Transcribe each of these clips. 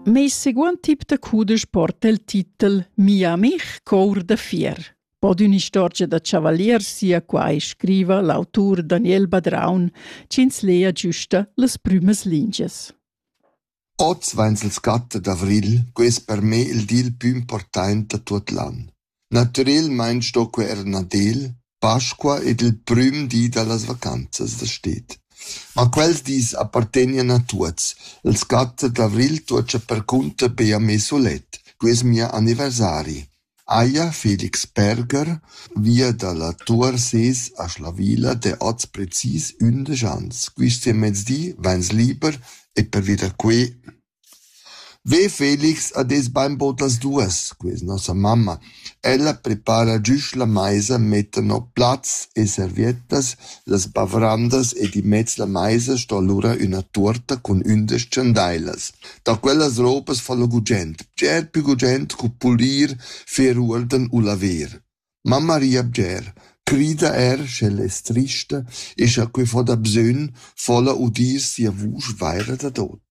Meis seguond tip da cudesch porta il titel Mia amich cour da fier. Pod ün'istorgia da chavalier sia quai scriva l'autur Daniel Badraun, ch'ins lea giusta las prümas lingias. Oz vains il scatta d'avrigl, quai es per me il dil pü important da tuot l'an. Natüralmaing sto que eir Nadel, Pasqua ed il prüm di da las vacanzas da sted. Ma quels dis appartegnan a tuots. Il scat d'avrigl tuocha percunter be a me sulet. Que es mia anniversari. Haja Felix Berger via da la Tuor ses a Schlavilla d'he hoz precis ündesch ans. Quist mezdi vains liber e per vita que Ve Felix ha detg bainbaud las duas, questa nossa mamma. Ella prepara giusch la maisa, metta no plats e servettas, las bavrandas ed immez la maisa sto lura üna tuorta cun ündesch chandailas. Da quellas ropas fa lo gugent, bger pü gugent cu pulir, fer uolden u laver. Mamma ria bger, crida er sch'ella es trista e scha que fo da bsögn, fo'la udir sia vusch vaira dadot.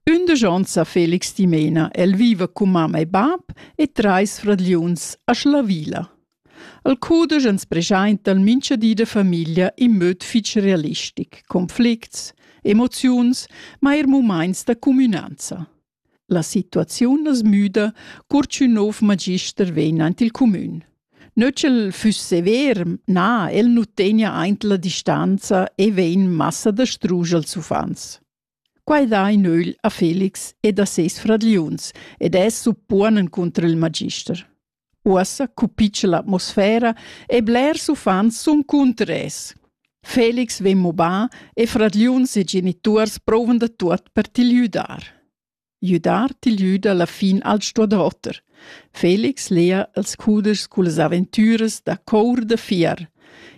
Ündesch ons ha Felix dimena. El viva cun mamma e bap e trais fradgliuns a Schlavila. El cudesch ans preschainta il mincha di da famiglia in möd fich realistic, conflicts, emoziuns, ma eir mumaints da cumünanza. La situaziun as müda cur ch'ün nouv magister vegn aint il cumün. Nö ch'el füss sever, na, el nu tegna aint la distanza e vegn massa dastrusch als uffants. Quai dà in ögl a Felix ed a seis fradgliuns ed es suppuonen cunter il magister. Uossa cupitscha l'atmosfera e blers uffants sun cunter es. Felix vegn mobà e fradgliuns e genituors prouvan da tuot per til güdar. Güdar til güda la fin al sto da oter. Felix lea els cudeschs cullas aventüras da cour da fier.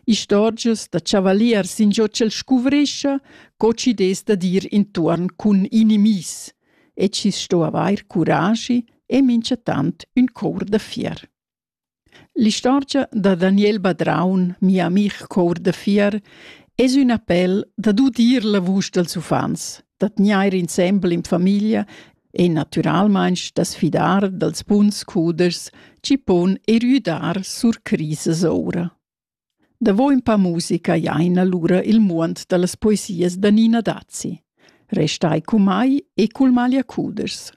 Istorgias da chavaliers in giò ch'el scuvrischa, co chides da dir intuorn cun inimis. e chi sto avair curaschi e minchatant ün cour da fier. L'istorgia da Daniel Badraun, mi amich cour da fier, es ün appel dad udir la vusch dals uffants, da tgnair insembel in famiglia e natüralmaing da sfidar dals buns cudeschs chi pon erüdar sur crisas oura. Davo ün pa musica jaina lura il muond da las poesias da Nina Dazi. Restai cun mai e cul maglia cudeschs.